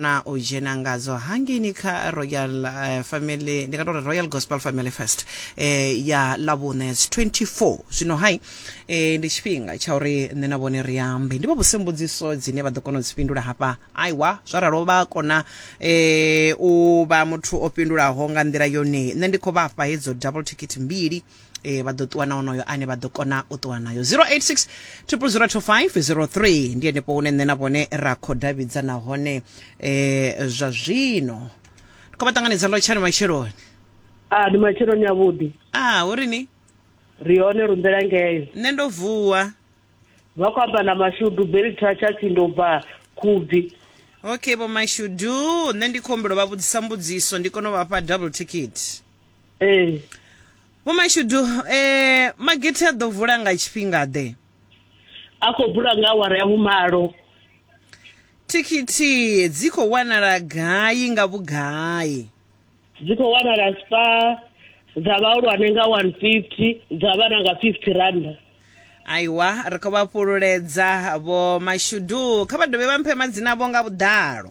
na u dzhena ngadzo hangeini kha royal uh, family ndi nga tori royal gospel family fest eh, ya lavhune 24 zwino hai eh, ndi tshifhinga tsha uri nṋe na vhone ri ambe ndi vha vhuse mbudziso dzine vha ḓo kona u dzi fhindula hafha aiwa zwa ralo vha kona eh, u vha muthu o fhindulaho nga nḓila yone nṋe ndi khou vha fha hedzo double ticket mbili e vha ḓo ṱuwa na onoyo ane vha ḓo kona u ṱuwa nayo 086 0002503 ndi henefho hune nṋe na vhone ra khou davhidzana hone um zwa zwino ndi khou vha ṱanganedza lotshani matsheloni a ah, ndi matsheloni avhuḓi a ah, hu ri ni ri hone rumbela ngeyo nṋe ndo vuwa vha khou amba na mashudu belitra tshatsi ndo bva khubvi okay vho mashudu nṋe ndi khombulo vha vhudzisa mbudziso ndi kone u vhafha double ticket ee vho mashudu eh magete a ḓo vula nga tshifhinga ḓe a khou bula nga awara ya vhumalo thikhithi dzi khou wanala gai nga vhugai dzi khou wanala spa dza vhahulwane nga 150 dza vhana nga 50 randa aiwa ri khou vha fhululedza vho mashudu kha vha dovhe vha mphe madzina avho nga vhuḓalo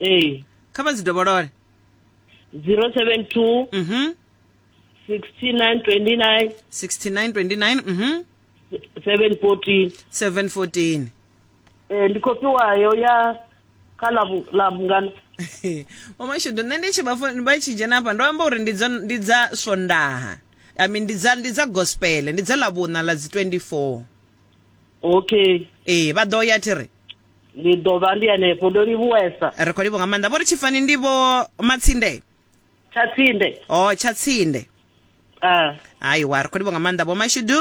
ee kha vha dzi dovholole 072 mm -hmm. 6929 6929 mm -hmm. 714 714 ee ndi khou fhiwayo ya kha lavhungana mamashudu nṋe ndi tshi vha vha tshi dzhena hafha ndo amba uri ndi dza swondaha i mean ndi dza ndi dza gospel ndi dza lavhuna la dzi 24 okay ee vha ḓo ya thi ri ndi ḓo vha ndi hanefho ndo livhuwesa ri khou livho nga maanḓa vho ri tshifani ndi vho matsinde tsha tsinde o tsha tsinde ah aiwa ri khou livho nga maanḓa vho mashudu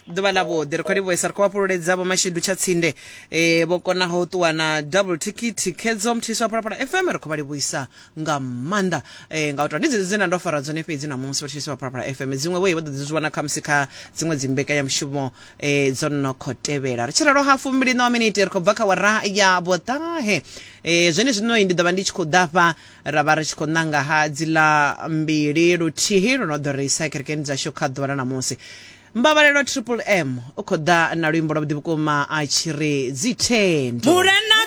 ḓuvha ḽa vhuḓi ri khou livhuesa ri khou vhafhululedza vho mashudu tsha tsinde eh vho konaho u ṱuwa na double ticket khedzo mthiswa phalaphala fm ri khou vha livhuisa nga maanḓa eh, nga u tou ndi dzedzo dzine nda ndo fara dzone fhedzi namusi vhatshisi vha phalaphala fm dziṅwe vhoyi vha ḓo dzi zwi wana khamusi kha dziṅwe dzi mbekanyamushumo eh, dzo no khou tevhela ri tshi ralo ha fumbili ṋawa miniti ri khou bva kha wara ya vhoṱahe eh, zwene zwinoi ndi ḓo vha ndi tshi khou ḓafha ra vha ri tshi khou ṋanga ha dziḽa mbili luthihi lu no ḓo ri isa kerekeni dzashu kha ḓuvha ḽa namusi mbabalelo triple m u khou ḓa na luimbo lwa vhuḓi vhukuma a tshi ri dzithendo Murena